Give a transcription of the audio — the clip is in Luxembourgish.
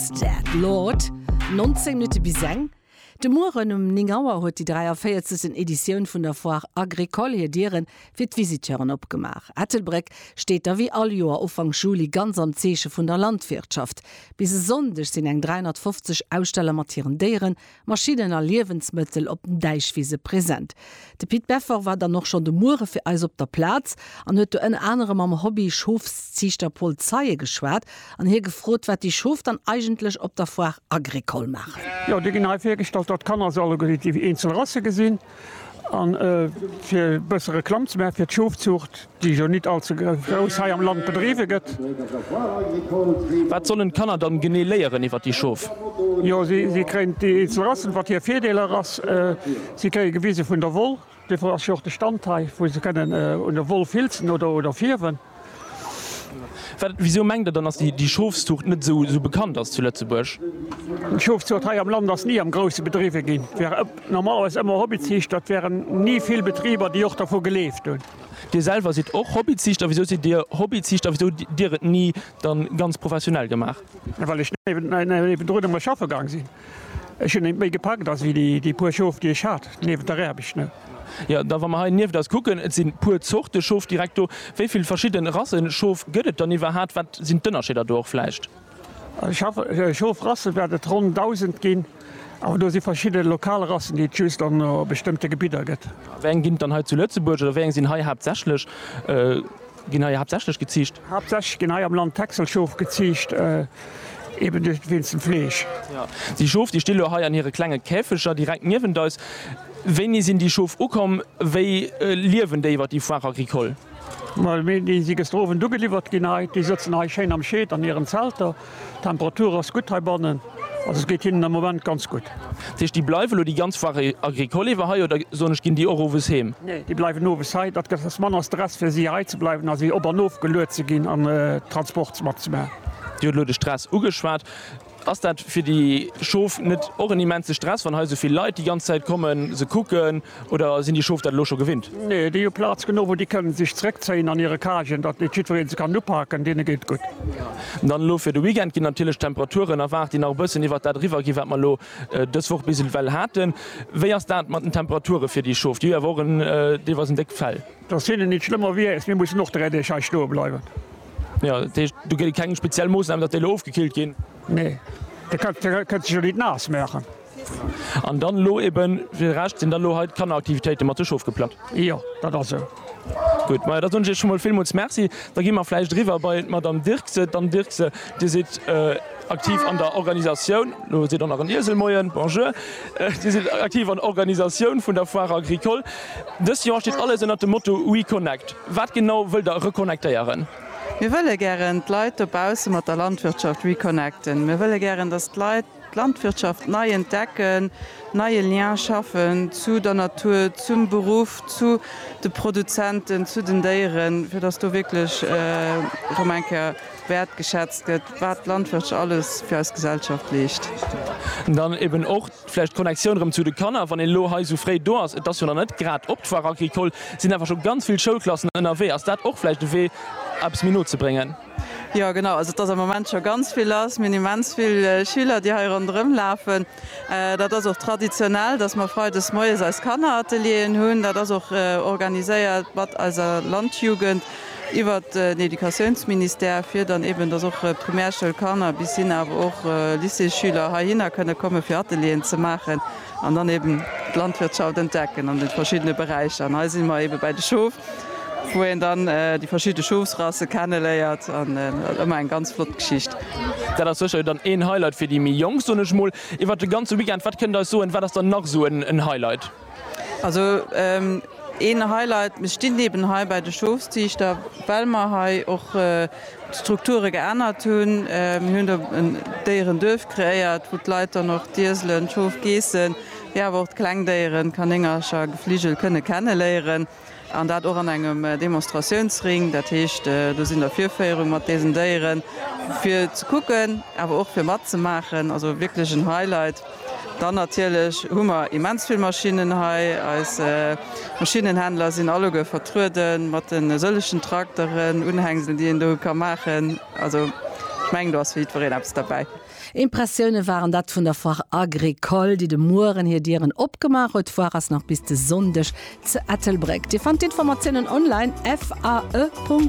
Stad Lord, 19 Minutte bis eng. De Mueren um 9 Auer huet déi 43. Editioun vun der Foire Agricole hir Diere fir d'Visiteuren opgemaach. Ettelbréck steet da wéi all Joer Ufank Juli ganz am Zeeche vun der Landwirtschaft. Bis e Sonndeg sinn eng 350 Aussteller mat hiren Déieren Maschinen a Liewensmëttel op den Däichwise present. De Pit Beffer war dann och schonn de Muere fir eis op der Plaz an huet do ënner anerem mam Hobby-Schofsziichter Paul Zeie geschwat an hie gefrot, wat déi Schof dann eigentlech op der Foire Agricole maachen. Jo, déi ginn hei virgestallt, datt d'Kanner se alleguer déi eenzel Rasse gesinn. A fir e bësse Reklamm ze maachen fir d'Schofzuucht, déi jo nit all ze grouss hei am Land bedriwwe gëtt. Wat sollen d'Kanner dann genee léieren iwwert déi Schof? Jo, si kréien déi eenzel Rassen, wat hir Virdeeler ass. Si kréie gewise vun der Woll, dofir ass jo och de Stand hei, wou se kënnen un der Woll filzen oder fierwen. Wisou mengt Der dann, dass déi Schofszuucht net esou bekannt ass zu Lëtzebuerg? D'Schofzuucht hei am Land ass ni am Grousse bedriwwe ginn. Et war normalerweis ëmmer Hobbyziichter. Et waren ni vill Betriber, déi och dervu geleeft hunn. Dir selwer sidd och Hobbyziichter. Wisou sidd Dir Hobbyziichter? Wisou hutt Dir et ni da ganz professionell gemaach? Well ech neiwendrun ëmmer schaffe gaang sinn. Ech hun eent méi gepackt as wéi déi puer Schof déi ech hat, niewent der Räbech ne. Jo, da wa mer hei nieft eis kucken, et sin puer Zorte Schof direkt do. Wéi vill verschidden Rassen Schof gëtt et dann iwwerhat? Wat sin d'Ënnerscheeder do och vläicht? Also Schof Rassen wärt et ronn 1000 gin, awer do si verschidden lokal Rassen déi et just an bestëmmte Gebidder gëtt. Wéi eng gin et dann hei zu Lëtzebuerg oder wéi eng sin hei haaptsächlech? Ginn hei haaptsächlech geziicht. Haaptsächlech ginn hei am Land d'Häckselsschof geziicht, eben duerch wéinst dem Fleesch. Déi Schof, déi stinn elo hei an hire klenge Käfeger direkt niewent eis. Wéini sinn déi Schof ukomm? Wéi liewen déi iwwer déi Foire agricole? Déi si gëschter Owend ugeliwwert ginn hei. Déi sëtzen hei schéin am Schied an hiren Zelter. D'Temperatur ass gutt heibannen, also et geet hinnen am Moment ganz gutt. Dat heescht, déi bleiwen elo déi ganz Foire agricole iwwer hei oder, soen ech, ginn déi och owes heem? Nee, déi bleiwen owes hei. Dat ass manner Stress fir si hei ze bleiwen a si op an of geluet ze ginn an Transports matzemaachen. Dir hutt elo de Stress ugeschwat. Ass dat fir déi Schof net och en immense Stress, wann hei esou vill Leit déi ganz Zäit kommen, se kucken, Oder sinn déi Schof dat elo scho gewinnt? Nee, déi hu Plaz genuch wou déi kënnen sech zeréckzéien an hire Kajen, datt net jiddwereen se kann upaken. Deene geet et gutt. Dann elo fir de Weekend ginn natierlech d'Temperaturen erwaart, déi nach e bëssen iwwert dat eriwwer ginn, wat mer elo dës Woch bis ewell haten. Wéi ass dat mat den Temperature fir déi Schof? Déi hu jo awer och deelweis en déckt Fell. Datt hinnen et schlëmmer wier, mir mussen och dräi Deeg hei stoe bleiwen. Jo, dat heescht, do gëtt et keng speziell Moossnamen, datt déi elo ofgekillt ginn? Nee, da kënnt se jo nit naass maachen. An dann elo eben fir de Rescht sinn dann elo hei d'Kanneraktivitéite mat de Schof geplant? Jo, dat ass esou. Gutt, Majo, da soen ech Iech scho mol villmools Merci. Da gi mer vläicht eriwwer bei d'Madamm Dirkse. D'Damm Dirkse, Dir sidd aktiv an der Organisatioun, elo seet och nach en Iesel moien, bonjour, Dir sidd aktiv an der Organisatioun vun der Foire agricole. Dëst Joer steet alles ënnert dem Motto We connect. Wat genau wëllt Der reconnectéieren? Mir wëlle gären d'Leit dobausse mat der Landwirtschaft reconnecten. Mir wëlle gären, dass d'Leit D'Landwirtschaft nei entdecken, neie Lien schaffen zu der Natur, zum Beruff, zu de Produzenten, zu den Déieren, fir datt do wierklech erëm eng Kéier wäertgeschätzt gëtt, wat d'Landwirtschaft alles fir eis Gesellschaft leescht. Dann eben och vläicht d'Connectioun erëm zu de Kanner, wann een elo hei esou fréi do ass, et ass jo nach net grad op, d'Foire agricole, et sinn awer scho ganz vill Schoulklassen ënnerwee, ass dat och vläicht e Wee, eppes méi no ze bréngen? Jo genau, also et ass am Moment scho ganz vill lass. Mir hunn immens vill Schüler, déi hei ronderëm lafen. Dat ass och traditionell, dass mer freides moies eis Kanneratelierien hunn. Dat ass och organiséiert mat eiser Landjugend iwwert den Educatiounsministère, fir dann eeben, dass och Primärschoulkanner bis hin awer och Lycéesschüler heihinner kënne komme fir Atelierien ze maachen. an dann eben d'Landwirtschaft entdecken an de verschiddene Beräicher. An hei si mer ebe bäi de Schof, wou een dann déi verschidde Schofsrasse kenne léiert an ëmmer eng ganz flott Geschicht. Dat ass sécher dann een Highlight fir déi méi Jonk, soen ech mol. Iwwert de ganze Weekend, wat kënnt Der eis soen, wat ass dann nach esou en Highlight? Also een Highlight, mir stinn eben hei bäi de Schofsziichter, well mer hei och. d'Strukture geännert hunn, mir hunn do en Déierenduerf kreéiert, wou d'Leit dann och d'Ieselen, d'Schof, Geessen, mee awer och d'kleng Déieren, Kanéngercher, Gefligel, kënne kenneléieren an dat och an engem Demonstratiounsring. Dat heescht, do sinn der Virféierung mat deesen Déieren, fir ze kucken, awer och fir matzemaachen, also wierklech en Highlight. Dann natierlech hu mer immens vill Maschinnen hei. Eis Maschinnenhändler sinn alleguer vertrueden mat de sëllegen Trakteren, Unhängselen, déi een do ka maachen. Also ech mengen, do ass fir jiddwereen eppes derbäi. Impressioune waren dat vun der Foire agricole, déi de Mueren hir Dieren opgemaach huet. D'Foire ass nach bis de Sonndeg ze Ettelbréck. Dir fannt d'Informatiounen online, FAE.lu.